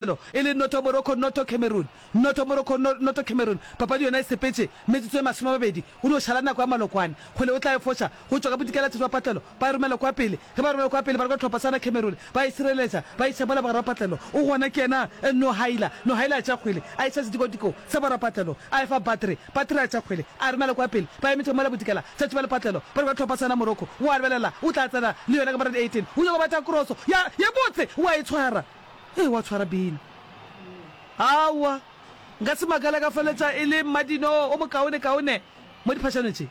Mafelo e le noto Morocco noto Cameroon noto Morocco no noto Cameroon Papadi yona e sepetše metsotso e masome a mabedi go no šala nako ya malokwane kgole o tla e foša go tšwa ka bodikelathito ba patlelo ba e romela kwa pele ge ba romela kwa pele ba re kwa tlhopha sana Cameroon ba e sireletša ba e iša mola bogare ba patlelo o gona ke yena no Haila no Haila a tšea kgwele a iša sedikotiko sa borwa patlelo a e fa Battery Battery a tšea kgwele a romela kwa pele ba emetša mola bodikela tšatši ba le patlelo ba re kwa tlhopha sana Morocco o a lebelela o tla tsena le yona ka boradi 18 o nyaka go batha kroso ya ye botse o a e tshwara Hei, wa tshwara bene. Aowa, nka se makale ka feletša e le mmadino o mokaonekaone mo diphašane tše.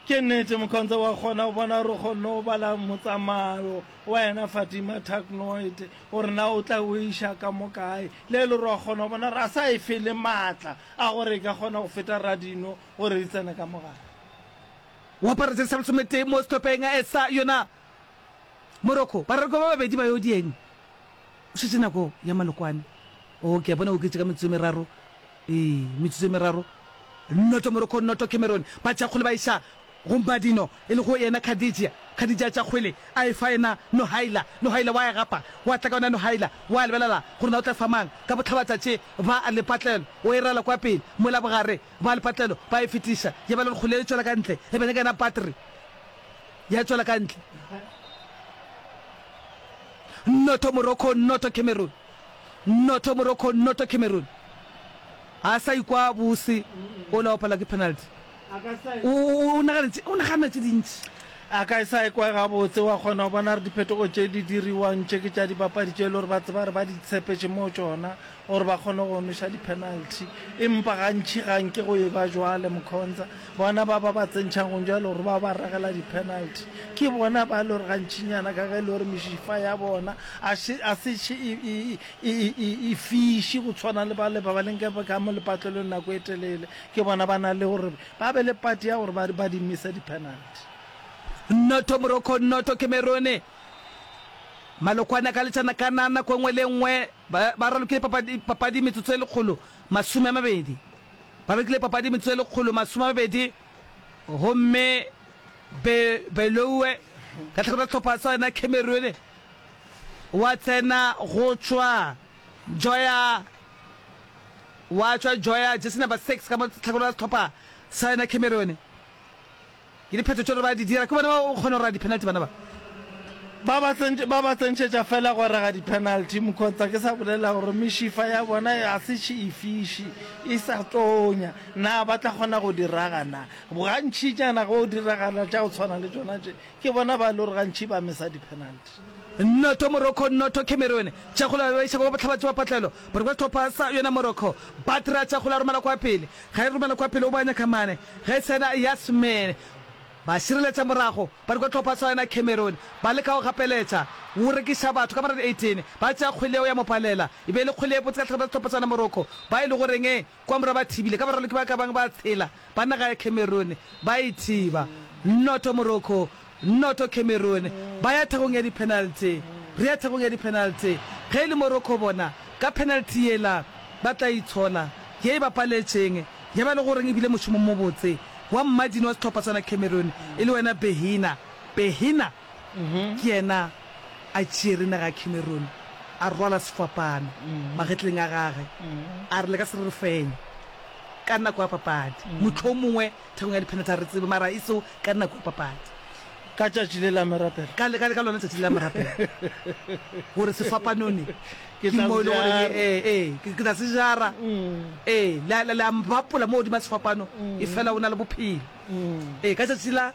Ke nnete, Mokhonza, wa kgona go bona gore o kgonne go bala motsamayo wa yena Fatima Tagnoid, gore na o tla o e iša ka mo kae, le e le gore wa kgona go bona gore a sa e fe le maatla a gore e ka kgona go feta radino gore e tsene ka mo gare. O aparetše sa lesometee mo sehlopeng sa yona. Moroko, Baroko ba babedi ba yo dieng. Go šetše nako ya malokwane. Oo, ke a bona o oketše ka metsotso e meraro. Ee, metsotso e meraro. Noto, Moroko, noto, Cameron. Ba tša kgole ba e ša go Mbadino, e le go yena Khadija. Khadija a tša kgwele a e fa yena Nohaila. Nohaila wa e gapa, wa tla ka yona Nohaila, wa lebelela gore na o tla e fa mang. Ka bohlabata tše ba a lepatlelo, o e rala kwa pele, mola bogare ba lepatlelo ba e fetiša, ya ba le lekgole le tšwela ka ntle, e ba nyaka yena Patri. ya tšwela ka ntle. Noto Morocco, noto Cameroon. Noto Morocco, noto Cameroon. A sa ikwa bose o la opela ke penalty. O naganetse o nagana tse dintsi. A ka e sa ikwa gabotse wa kgona go bona re diphetogo tše di diriwang tše ke tša dibapadi tše e le gore ba tseba re ba di tshepetše mo tšona gore ba kgone go omeša dipenalty, empa gantši ga nke go eba bjale, Mkhonza. Bona ba ba ba tsentšhang gong bjale gore ba ba ragela dipenalty, ke bona ba e le gore gantšinyana ka ge e le gore mešifa ya bona a se še e fiši go tshwana le ba le ba ba leng ka mo lepatlelong nako e telele, ke bona ba na le gore ba be le pati ya gore ba di missa dipenalty. Noto Morocco, noto Cameroon. Malokwane a Kaletšana ka na nako e nngwe le e nngwe ba, ba ralokile papadi, papadi metsotso e lekgolo masome a mabedi. Ba ralokile papadi metsotso e lekgolo masome a mabedi gomme Be, Beloue ka tlhakore ya sehlopha sa yona Cameroon wa tsena go tšwa Joya, wa tšwa Joya, jersey number six ka mo tlhakore ya sehlopha sa yona Cameroon. Ke diphetho tše re ba di dira, ke bona ba go kgona go raya di-penalty bana ba. Ba ba tsentše, ba ba tsentšetša fela go rega di-penalty, Mkhonza, ke sa bolela gore mešifa ya bona ga se tšhiifiši, e sa tonya. Na ba tla kgona go di raga na? Gantšinyana go diragala tša go tshwana le tšona tše, ke bona ba e le gore gantši ba misa di-penalty. Noto Morocco, noto Cameroon, tša kgole ba be ba iša kwa go bohlabatši ba patlelo, Burkina Faso, yona Morocco, Batra, tša kgole a romela kwa pele, ga e romela kwa pele o ba nyaka mane, Ge e tsena ya Smeene, ba šireletša morago, ba dikwa tlhopha sa yona Cameron, ba leka go gapeletša, wo rekiša batho ka moradi 18, ba tšea kgwele yeo ya mo palela, e be e le kgwele ye botse ka tlhaka tša sehlopha sa yona Morocco, ba e le go reng e kwa morwa ba thibile ka baraloki ba ka bang ba tshela ba naga ya Cameroon, ba e thiba. Noto Morocco Nnotho Cameroon ba ya thakong ya diphenalthi. Re ya thakong ya diphenalthi. Ge e le Morocco bona, ka phenalthi yela ba tla itshola. Ye e bapaletšeng ya ba le goreng e bile mošomo mobotse wa mmadino wa sehlopha sona Cameroon e le wena Behina. Behina ke yena a tšere naga ya Cameroon a rwala sefapano magetleng a gage a re le ka se re fenye ka nako ya papadi mohlomongwe Thekong ya diphenete ga re tsebe, mara e so ka nako ya papadi. Ka tšatši le la merapelo. Ka, ka, ka lona tšatši le la merapelo. Gore sefapanone Ke ke tla mo e le gore jara. ke, ee, ee, ke ke tla se jara. Ee, le a- le a- le a mbapola mo godimo ga sefapano, e fela o na le bophelo. Ee, ka tšatši la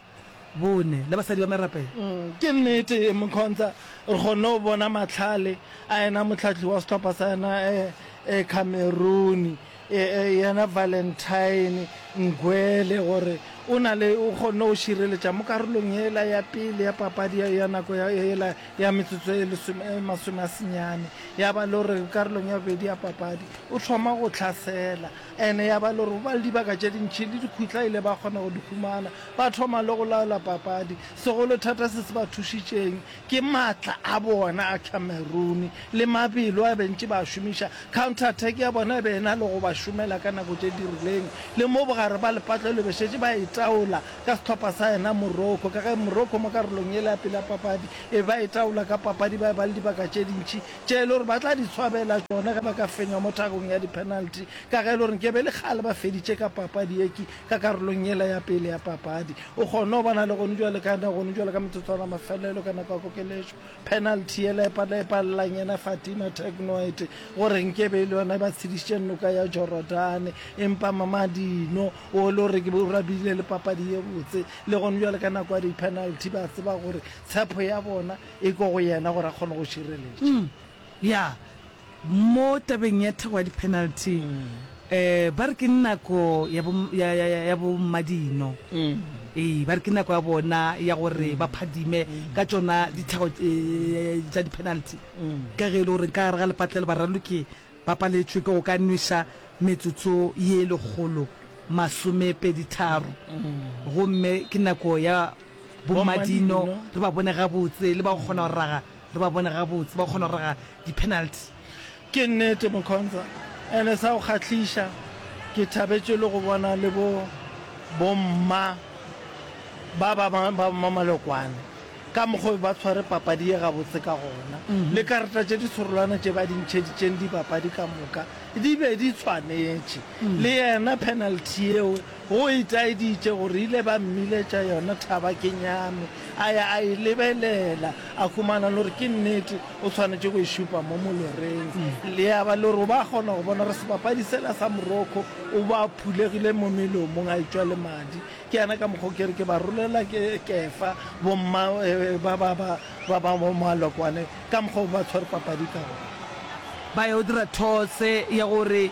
bone la basadi ba merapelo. Mm, Ke nnete ye Mokhontsha, re kgonne go bona matlhale a ena motlhahli wa sehlopha sa ena eh, eh, Cameroon. Yena Valentine Ngwele o re o na le o kgonne go šireletša mo karolong yela ya pele ya papadi ya ya nako ya yela ya metsotso e lesome e masome a senyane ya ba le gore karolong ya bobedi ya papadi o thoma go tlhasela ene ya ba le gore o ba le dibaka tše dintšhi le dikhutla ile ba kgona go di humana ba thoma le go laola papadi segolo thata se se ba thušitšeng Ke matla a bona a Cameroon le mabelo a be ntše ba a šomiša. Counter attack ya bona e be e na le go ba šomela ka nako tše di rileng, le mo bogare ba lepatlelo e be šetše ba itaola ka sehlopha sa yena Morocco. Ka ge Morocco mo karolong yela ya pele ya papadi e be ba itaola ka papadi, ba e ba le dibaka tše dintši tše e le gore ba tla di tshwabela tšona ge ba ka fenywa mo thagong ya di-penalty, ka ge e le gore nke be e le kgale ba feditše ka papadi ye. Ke. Ka karolong yela ya pele ya papadi, o kgonne go bona le gone jwale ka na, gone jwale ka metsotswana ya mafelelo ka nako ya kokeletšo, penalty yela e pala e palelang yena Fatima Tecnoet, gore nke e be e le yona e ba tshedišitšeng noka ya Jorodane. Empa Mamadino o e le gore ke be o rabile le papadi ye botse, le gone jwale ka nako ya di-penalty ba tseba gore tshepo ya bona e ko go yena gore a kgone go šireletša. Ya, mo tabeng ya thekgo ya di-penalty ba re ke nako ya bommadino. Ee, ba re ke nako ya bona ya gore ba phadime ka tšona dithekgo tša di-penalty ka ge e le gore ka gare ga lepatlelo baraloki ba paletšwe ke go ka nweša metsotso ye lekgolo masomepedi tharo gomme ke nako ya bommadino re ba bone gabotse le ba go kgona go raga Re ba bone gabotse, ba kgona go raga di-penalty. Ke nnete Mokhonza, ene sa go kgahliša ke thabetše le go bona le bo bomma ba ba mma Malokwane ka mokgwa be ba tshware papadi ye gabotse ka gona. Le karata tše diserolwana tše ba di ntšheditšeng dibapadi ka moka di be di tshwanetše le yena penalty yeo. Go itaeditše go rile ba mmiletša yona thaba ke nyame, a ya a e lebelela, a humana lore ke nnete o swanetše go e šupa mo moloreng. Leaba lore o ba kgona go bona gore sebapadi sela sa Morocco o ba phulegile mo melomong a itšwa le madi. Ke yana ka mokgwa o ke re ke ba rolela ke kefa bomma ba ba ba ba ba mo malokwane ka mokgwa o ba tshwere papadi ka gona. Ba ya go dira those ya gore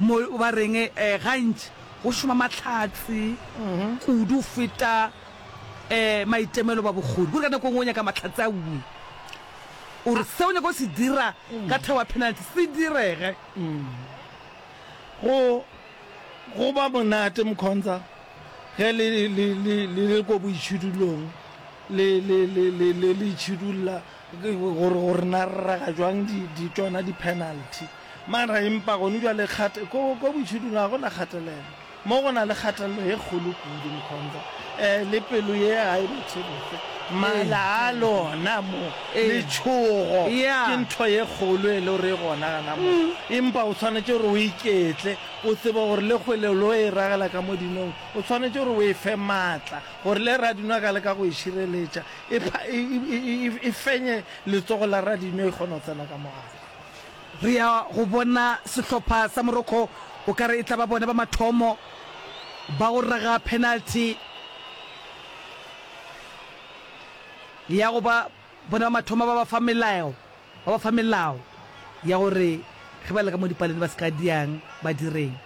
Mo o ba reng gantši go šoma mahlatse kudu go feta maitemelo ba bokgoni. Kore ka nako e nngwe o nyaka mahlatse a uwe gore se o nyaka go se dira ka theo wa penalty se direge. Go go ba monate Mkhonza ge le le le le ko boitšhidulong le le le le le le itšhidulla gore gore na re raga jwang di di tsona di penalty. Mara empa gonu bjale kgate, ko, ko boitšhudung ga go na kgatelelo. Mo go na le kgatelelo ye kgolo kudu, Mkhonza. E, le pelo ye ga e bethe bofe. Mala a lona mo, letšhogo, ke ntho ye kgolo e le gore e gona gana mo. Empa o tshwanetše gore o iketle, o tsebe gore le kgwele lo e ragela ka mo dinong, o tshwanetše gore o e fe matla, gore le radino a ka leka go e šireletša, e pha, e, e, e, e fenye letsogo la radino e kgone go tsena ka mogare. Re ya go bona sehlopha sa Morocco o ka re e tla ba bona ba mathomo ba go raga penalty. Ya go ba bona ba mathomo ba ba fa melao, ba ba fa melao ya gore ge ba le ka mo dipaleng ba se ka diang ba direng.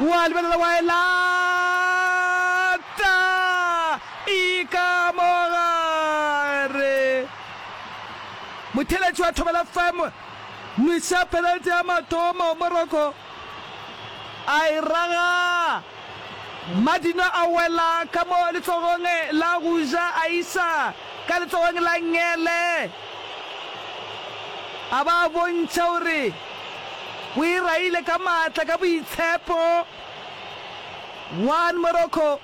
Wa lebelela wa e lata e ka mogare. Motheeletši wa Thobela FM nweša penalty ya mathomo Morocco a e raga. Madinwa a wela ka mo letsogong la go ja a isa ka letsogong la Ngele. A ba a bontšha gore o e raile ka maatla ka boitshepo, one Morocco,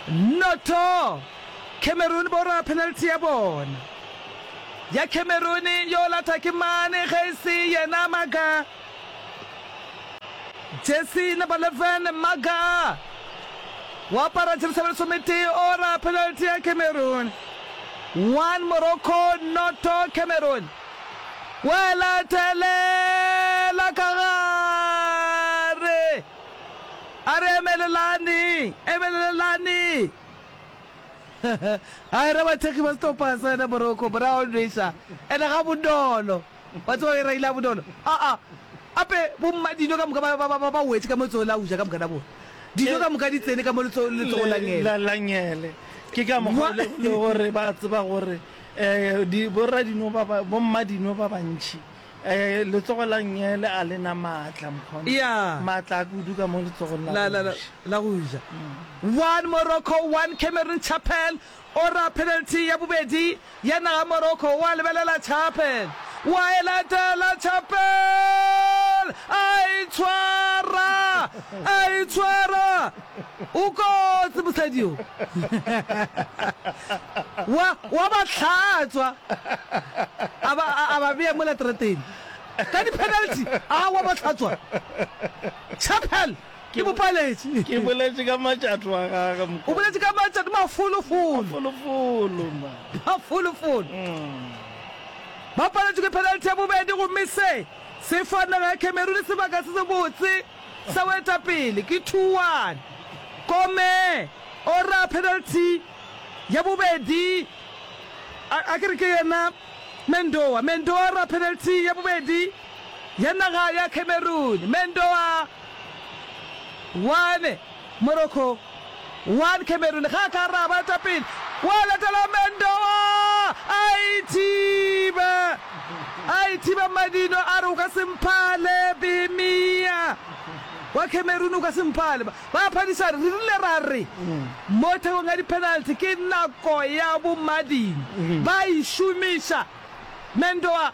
noto Cameroon bo ra penalty ya bona. Ya Cameroon yo lata ke mane ge e se yena Maga. Jersey number 11 Maga o apara jersey number lesometee ora penalty ya Cameroon 1 Morocco noto Cameroon wela thelela ka gare a re emelelane emelelane a re bathekgi ba stopa sena Morocco Brown Risha ene ga bonolo Wa tseba, Yeraile a bonolo. A, a, ape, bomma, dino ka moka ba, ba, ba, ba wetše ka mo letsogong la Uja ka moka la bona. Dino ka moka di tsene ka mo letso, letsogong la Ngele. La, la Ngele. Ke ka mokgwa le, le gore ba tseba gore, eh, di, boradino ba ba, bommadino ba bantši, eh, letsogo la Ngele a le na maatla, mokgone. Ya. Maatla a kudu ka mo letsogong la, la, la, la, Uja. la Uja. One Morocco, one Cameroon Chapel, O ra phenelthi ya bobedi ya naga Morocco, wa lebelela Chapel, wa e latela Chapel, a e tshwara, a e tshwara, o kotsi mosadi yo. Wa, wa ba hlatswa, a ba, a ba bea mola terateng. Ka diphenelthi, a wa ba hlatswa. Chapel! Ke bopaletše. Ke boletše ka matšato a gage, Mokgotsi. O boletše ka matšato, mafolofolo. Mafolofolo, ma. Mafolofolo. Ba paletšwe ke penalty ya bobedi gomme se se fa naga ya Cameroon sebaka se sebotse sa go eta pele. Ke two one. Kome o raya penalty ya bobedi, a, a ke re ke yena Mendoa. Mendoa o raya penalty ya bobedi ya naga ya Cameroon. Mendoa. One, Morocco. One, Cameroon. Ga a ka a raba, eta pele. Wa latela Mendoa! A e thiba! A e thiba Madino a re o ka se mphale, Bemia! Wa Cameroon o ka se mphale. Ba, ba phadisana. Re rile ra re mo thekong ya di-penalty ke nako ya bo Madino. Ba e šomiša. Mendoa.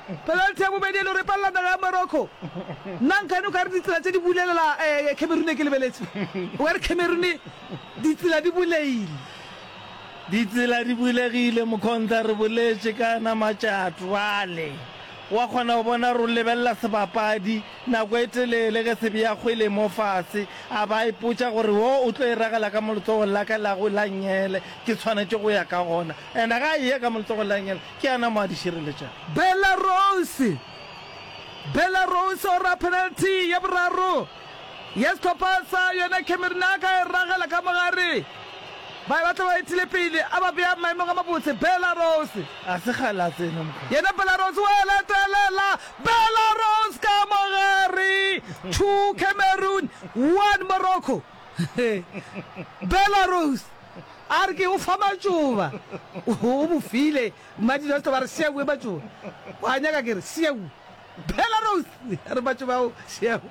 Penalty ya bobedi e lo repalela naga ya Morocco. Nna nkane o ka re ditsela tše di bulelela Cameroon e ke lebeletše. O ka re Cameroon ditsela di buleile. Ditsela di bulegile Mokhontha re boletše ka nama tšeatwale. Wa kgona go bona gore o lebelela sebapadi nako e telele ge se bea kgwele mo fase a ba a ipotša gore wo o tlo e ragela ka mo letsogong la ka la go la nyele ke tshwanetše go ya ka gona and ga a e ye ka mo letsogong la nyele Ke yena mo a di šireletšago. Belarus Belarus o ra penalty ya boraro ya sehlopha sa yona Cameroon a ka e ragela ka mo gare. Ba ba tla ba etile pele a ba bea maemong a mabotse. Belarus. A se kgale a tsene mokgwa. Yena Belarus wa latelela. Belarus ka mo gare. Two Cameroon, one Morocco. Belarus. A re ke go fa matšoba. O mo file. Mmadinastlo ba re, Seaue matšoba. O a nyaka ke re, Seaue. Phela Rose! A re, Matšoba ao, Seaue.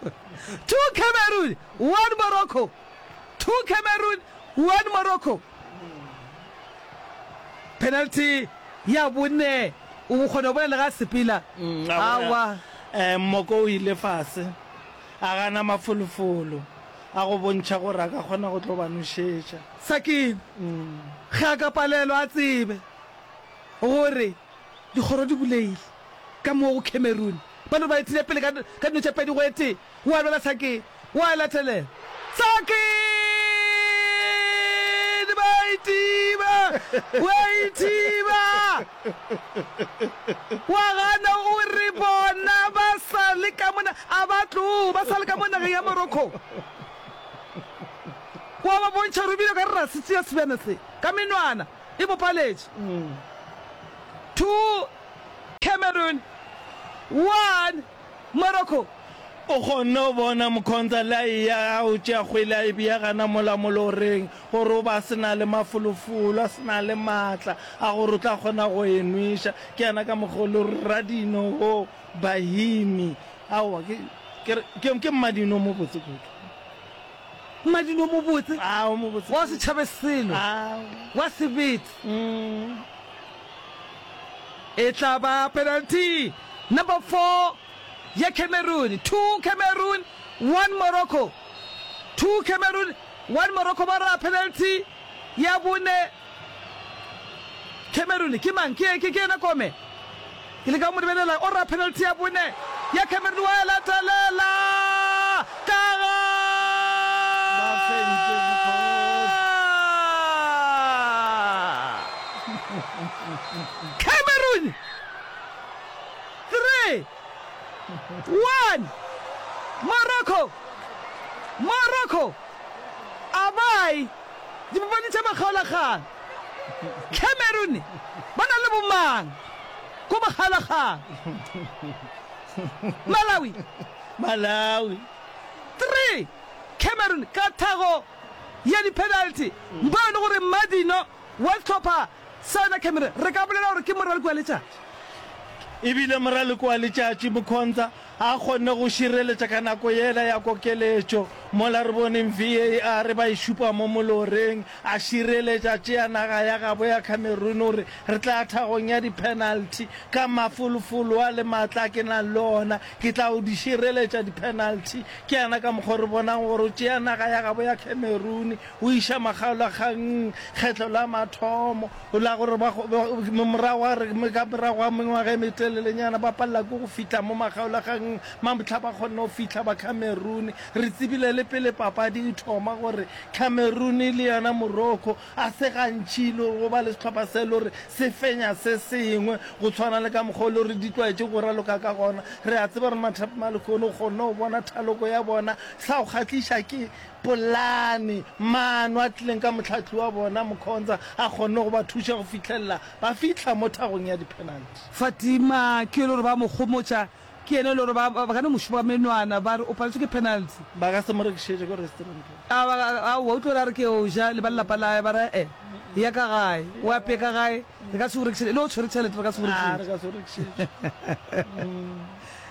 To Cameroon, one Morocco! To Cameroon, one Morocco! Penalty ya bone, o kgona go bona le ga a sepela. Aowa. Mmoko o ile fase. A gana mafolofolo a go bontšha gore a ka kgona go tlo ba nošetša. Sakeng, ge a ka palelwa a tsebe gore dikgoro di bulegile. Ka moo go Cameroon, ba no ba ithile pele ka dino tše pedi go e tee. O a lwela Sakeng, o a e latelela. Sakeng! Ba ithiba! O a ithiba! Wa gana, o re, Bona, ba sa le ka mona. A ba tlo ba sa le ka mo nageng ya Morocco. Wa ba bontšha rubilo ka rra se tšea sebjana se ka menwana e mo paletše. Two, Cameroon. One. Morocco o kgonne go bona Mkhonza le a eya a o tšea kgwele a e bea gana mola moloreng gore o ba se na le mafolofolo, a se na le maatla a gore o tla kgona go e nweša. Ke yana ka mokgwa o le gore radino wo Bahimi, aowa ke, ke re, ke, ke mmadino o mobotse kudu. Mmadino o mobotse, wa go se tšhabe selo, wa sebete. E tla ba penalty number four ya Cameroon. Two Cameroon, one Morocco. Two Cameroon, one Morocco. Ba ra penalty ya bone. Cameroon ke mang? Ke, ke, ke yena Kome. Ke leka go mo lebelela. O ra penalty ya bone ya Cameroon wa e latelela ka ga. Ba fentše mokhosi. Cameroon! Three, one, Morocco! Morocco! Abai! Dipapadi tša Makgaolakgang, Cameroon ba na le bomang ko Makgaolakgang? Malawi, Malawi, three, Cameroon ka thago ya di-penalty mo e le gore Mmadino wa Sehlopha Tsena, Cameron. Re ka bolela gore ke Moraloki wa Letšatši. E bile Moraloki wa Letšatši, Mukhonza, a kgonne go šireletša ka nako yela ya kokeletšo. Mola re boneng VAR ba e šupa mo moloreng, a šireletša tšea naga ya gabo ya Cameroon o re, Re tla thagong ya diphenalthi. Ka mafolofolo a le matla a ke nang le ona, ke tla o di šireletša diphenalthi. Ke yana ka mokgwa o re bonang gore o tšea naga ya gabo ya Cameroon. go iša makgaolakgang kgetlo la mathomo la gore ba morago a re ka morago ga mengwaga e metelelenyana ba palela ke go fihla mo makgaolakgang mamhla ba kgonne go fihla ba cameroon re tsebile le pele papadi e thoma gore cameroon le yona morocco a se gantši e le go ba le sehlopha se le gore se fenya se sengwe go tshwana le ka mokgwa o le gore di tlwaetše go raloka ka gona re a tseba gore mathapi malekono o kgonne go bona thaloko ya bona sa go kgahliša ke polane, maano a tlileng ka mohlahli wa bona Mukhonza a kgonne go ba thuša go fihlelela ba fihla mo thagong ya diphenalti. Fatima ke yo e le gore ba mo gomotša, ke yena yo e le gore ba gana mošomo ka menwana ba re o paletšwe ke phenalti. Ba ka se mo rekišetše ko restoranto. Aowa, o tlo re a re ke yo ja le ba lelapa la hae, ba re e-e, ya ka gae, o apee ka gae, re ka se go rekišetše, le ge o tshwere tšhelete re ka se go rekišetše.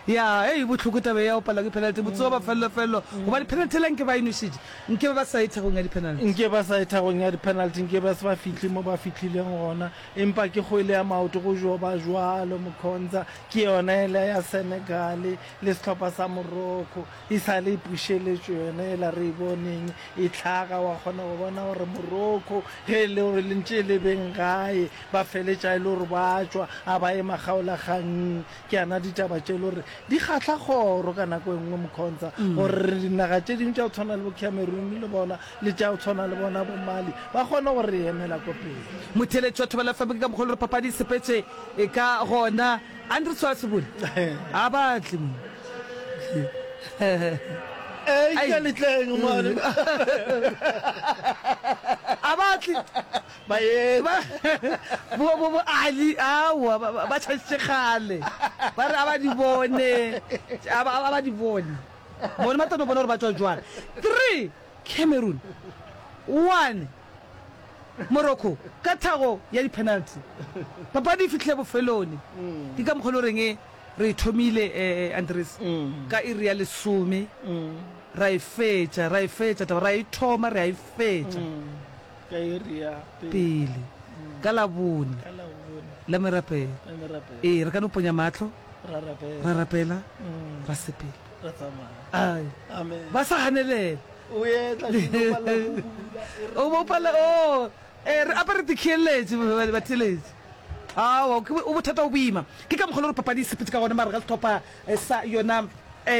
Ya, e e bohloko taba ye ya go palelwa ke penalty. Motse wa mafelelo-felelo, gobane penalty yela nke ba e nwešitše, nke be ba sa ye thagong ya dipenalty. Nke ba sa ye thagong ya dipenalty, nke ba se ba fihle mo ba fihlileng gona. Empa ke kgwele ya maoto go jo ba jwalo, Mokhonza. Ke yona yela ya Senegal le sehlopha sa Morocco. E sa le pušeletšo yona yela re e boneng e hlaga. Wa kgona go bona gore Morocco ge e le gore le ntše le beng gae, ba feletša e le gore ba tšwa, a ba ema kgaolakgang Ke yana ditaba tše e le gore di kgahla kgoro ka nako e nngwe Mkhonza, gore re dinaga tše dingwe tša go tshwana le bo Cameroon le bona le tša go tshwana le bona bo Mali ba kgone go re emela ko pele. Motheeletši wa Thobela FM ke ka mokgwa o le gore papadi e sepetše ka gona. Andri Swasubule ga ba tle mo. Eja letleng mane. Ga ba tle. Ba eba bo, bo, bo Ali, aowa, ba, ba tšhasitše kgale. Ba re a ba di bone, a ba, a ba di bone. Bone ba tla no bona gore ba tšwa jwang. Three, Cameroon. One, Morocco, ka thago ya di-penalty. Papadi e fihlile bofelone. Ke ka mokgwa e le goreng re e thomile, eh, Andries, ka iri ya lesome, ra e fetša, ra e fetša taba, ra e thoma, re a e fetša. pele ka Labone la merapelo. Ee, re ka no ponya mahlo ra rapela ra sepela. Ba sa ganelela. O bo pala o eh re apare dikhieletse batheletsi. Awa o bothata o boima. Ke ka mokgwa lo re papadi e sepetse ka gona mara re ka se thopa sa yona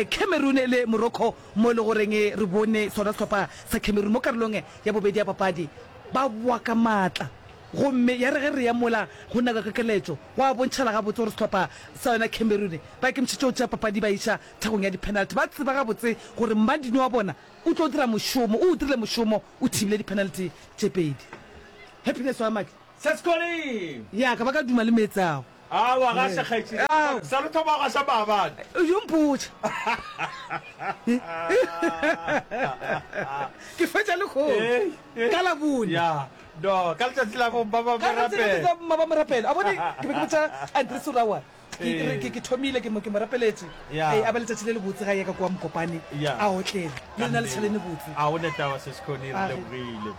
Cameroon le Morocco Mo e le goreng re bone sona sehlopha sa Cameroon mo karolong ya bobedi ya papadi, ba boa ka maatla gomme ya re ge re ya mola go nako ya kokeletšo, gwa bontšhela gabotse gore sehlopha sa yona Cameroon ba ikemišetše go tšea papadi ba iša thakong ya dipenalty. Ba tseba gabotse gore mmadinyo wa bona o tlo dira mošomo, o o dirile mošomo, o thibile dipenalty tše pedi. Happiness wa madi. Seskoleng! Ya ka ba ka duma le meetse ao. Aowa, ga se kgaetšedi. Sa le thoma ga sa maabane. O yo mpotša. Ke fetša le kgomo ka Labone. Ya, no, ka letšatši la bomma ba mo rapela. Ka letšatši la bomma ba mo rapela. A bone, ke be ke botša Andre se ra wa. Ke thomile ke mo rapeletše. A be letšatši le le botse ga ye ka kwa Mokopane a otlele. Le lena le tšhalene botse. A o ne taba se se khone e re lebogile.